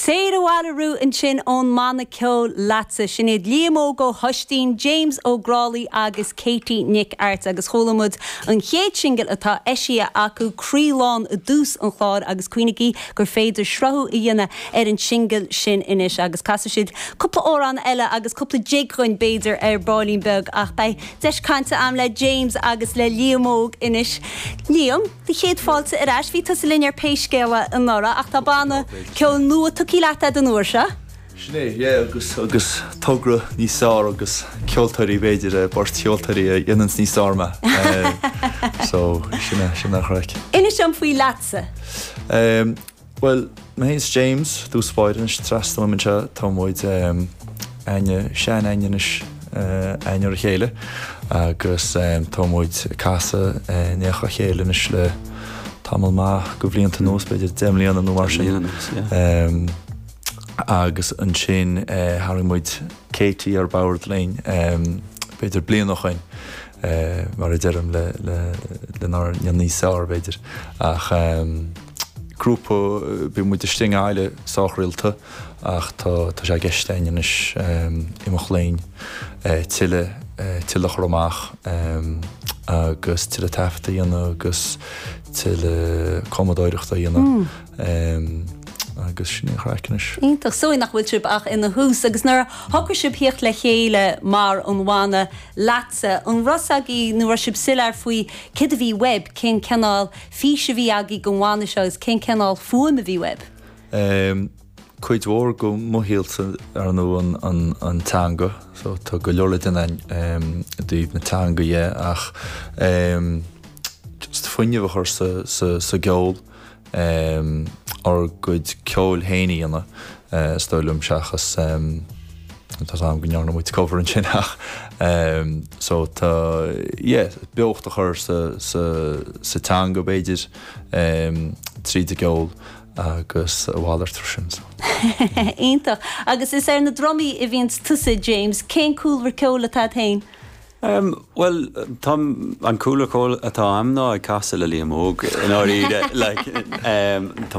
Téir abhaile riú ansin ón mbanna ceoil leatsa. Sin iad Liam Óg Ó hOistín, James Ó Grálaigh agus Katie Nic Airt agus chuala muid an chéad singil atá eisithe acu, Croí Lán i dtús an chláir agus cuimhnigí gur féidir sruthú a dhéanamh ar an singil sin anois agus casfaidh siad cúpla amhrán eile agus cúpla jig dhúinn b'fhéidir ar baillín beag ach beidh deis cainte a'm le James agus le Liam Óg anois. Liam? Do chéad fáilte ar ais. Bhí tusa linn ar Pé Scéal É anuraidh ach tá banna ceoil nua tugthaí leat a'd an uair seo. Sin é, yeah agus agus togra níos fearr agus ceoltóirí b'fhéidir eh, beirt cheoltóirí a dhéananns níos fearr mé eh, so sin é, sin an chraic. Inis dom faoi leatsa. Ehm, Bhuel, mé fhéin is James, dtús báire anois, trasna uaim anseo, tá muid aithne, seanaithne anois a'inn ar a chéile agus tá muid ag casadh in éineacht le chéile anois le tamall maith de bhlianta anuas, b'fhéidir deich mbliana nó mar sin. Deich mbliana anuas, yeah. Agus ansin tharraing muid Katie ar bord linn b'fhéidir bliain ó shoin mar a deirim lenár ndéanamh níos fearr b'fhéidir, ach grúpa, bíonn muid istigh i nGaillimh sách rialta ach tá sé i gceist againn anois imeacht linn tuilleadh tuilleadh a chur amach agus tuilleadh taifeadta a dhéanamh agus tuilleadh cumadóireachta a dhéanamh agus sin í an chraic anois. Iontach. So nach bhfuil sibh ach ina thús agus nuair a shocraigh sibh theacht le chéile mar an bhanna, leatsa. An raibh 's agaibh nó raibh sibh soiléir faoi céard a bhí uaibh, cén cineál fís a bhí agaibh don bhanna seo agus cén cineál fuaim a bhí uaibh? Cuid mhór de mo shaolsa, ar ndóigh, an teanga so tá go leor le déanamh i dtaobh na teanga dhe ach just fuinneamh a chur sa gceol. ár gcuid ceoil fhéin a dhéanamh, is dóigh liom, seachas, tá 's a'm go ndearna muid cover ansin ach so tá, yeah, beocht a chur sa, sa, sa teanga b'fhéidir tríd an gceol agus a mhalairt sin so. Iontach. Agus is ar na drumaí a bhíonns tusa, James. Cén cúlra ceoil atá a'd fhéin? Em, bhuel, táim, an cúlra ceoil atá a'm ná ag casadh le Liam Óg, i ndáiríre, like, em, tá.